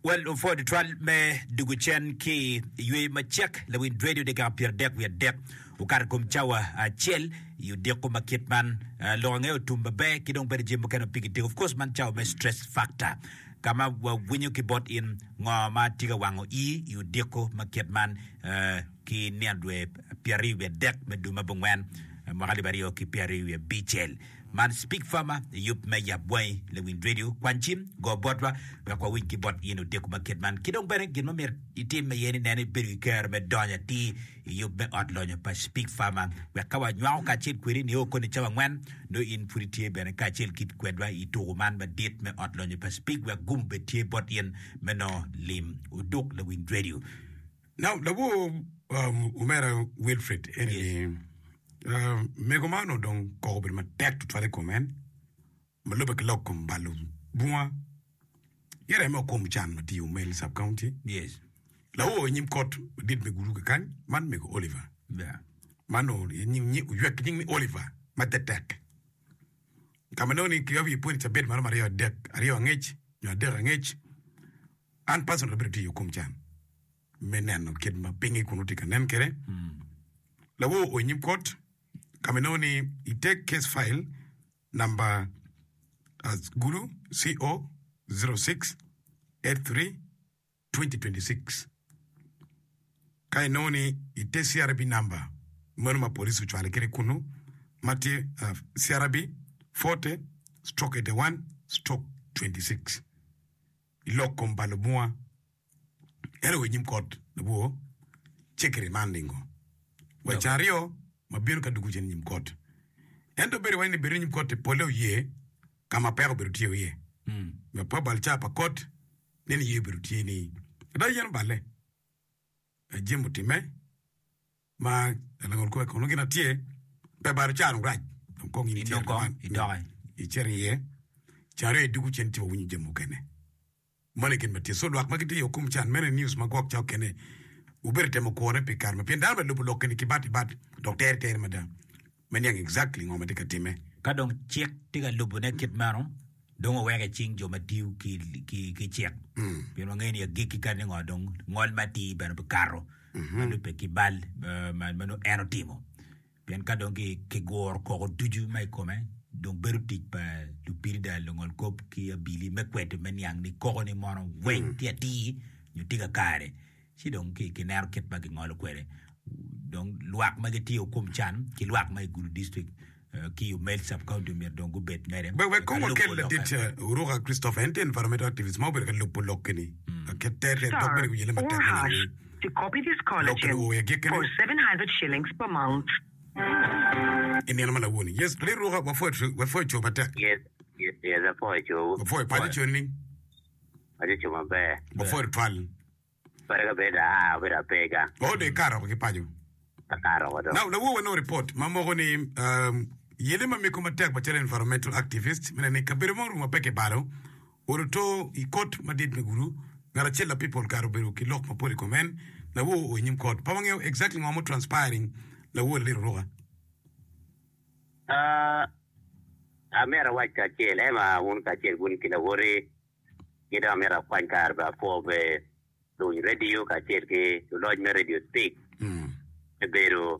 Well, lupwod twal me dugu cen ki i yweyo macek lawind redio dyekal pyera dek wiye dek okato kom cawa acel i odiko ma kit man uh, lok angeyo tum maber ki dong bene jami mukene pigi dik of course man cawa me stress factor kama wawinyo ki bot in ngo ma tye ka wango i i odiko ma kit man uh, ki nino dwe pyera aryo wiye dek me dwe ma bungwen uh, mwaka alip aryo ki pyera aryo wiye bicel Man Speak Farmer yub me yap bwangi Lewind Radio kwan cim go botwa wek wawiny ki bot in odiko ma kit man ki dong bene gin ma myero itim aye ni neno ibedo ki kero me donyo atir i yub me ot lonyo pa Speak Farmer wek ka wanywako kacel kwedi nio koni cawa angwen nongo in pud itye bene kacel kit kwedwa i tuku man madit me ot lonyo pa Speak wek gumo bed tye bot in me nongo lim oduk Lewind Radio Now labwor um, omera Wilfred eni ni uh, mego man onongo dong koko obedo matek tutwal i kom en ma lubbe ki lok kom balo bunga ki reme o kom can ma tye i Umel sub county Yes. lawo i nyim kot madit me gulu kekany man mego Oliver Yeah. man o- i nying- nying- oywek ki nying ni Oliver ma tetek ka ma nongo ni ki awi pwony cabit maro maryo adek aryo angec nyo adek angec An personal abedo tye i okom can me neno kit ma pinge kun nongo tye ka nen kwede. Lawo oo i nyim kot ka ma inongo ni i te case file namba as gulu CO 06 83 2026 ka inongo ni i te CRB namba meno ma police ocwale kwede kunu ma tye ah, CRB 40 stroke 81 stroke 26. i lok kom pa lubunga ento wa i nyim kot labwor cekere man ningo? Wa i can aryo ma bino ka dwogo cen i nyim kot. Ento bedo wai ni bedo i nyim kot-ti polle oye ka ma peko obedo tye iye. Me pa bal ca pa kot, nen iye obedo tye ni ada yen oballe, ada jami otimme, Ma langol kome kono gin atye pe balo can orac dong kong in ityero man idoke icito iye can aye dugu cen tye wawinyo jami mukene moni gin matye so lwak ma gitye yo kom can mene news ma gwok cok kene wubedo temo kwone pi kare ma pien dano bene lubo lok keni ki bat ibat dok tere tere mada me niang exactly ngo ma tye ka timme. Ka dong cik tye ka lubone kit meno, dong oweko i cing jo ma tiyo ki cik, pien wangeyo ni agikki kadi ni ngo dong ngol me atir bene bikato ma lubbe ki bal ma nongo en otimo. Pien ka dong kiguro koko ducu ma i kome, dong bedo tic pa lupirida, lungolkop ki abili me kweto me niang ni koko-ni mono weng tye atir nyo tye kakare. ci dong kineno kit ma gingolo kwede dong lwak ma gitiyo kum can ki lwak ma i Gulu District ki Umel Sub County myero dong gubed mere. Wek wek kong wakel ladit Uruka Christopher, en tye environmental activist ma obedo ka lubo lokke-ni ki tek dok bene ki wiyele matek me neno ni lokke-ni owo i agikkine. I nino ma lawoni. Yes, Lee Ruka, wapwoyo coo matek. Wapwoyo paco coni. Aye co maber. Mapwod twal. Pare ka bedo aa obedo apega. Oh dek ka aroko ki paco. Ka ka aroko do. Now lawowa nongo report ma moko ni yele ma meko matek macalo environmental activist mene ni kabedo mo orumo apeke balo olo to i kot madit me gulu ngat acel la people kare obedo ki lok mapol i kom en lawowa o i nyim kot pa wangeyo exactly ngo mo transpiring lawowa laliro ruka. A Amito awac kacel, Emma, wun kacel wun ki lawoti, ki dong amito akwany kare bene apwoo be luny radio kacel ki luloc me radio Speak me bedo.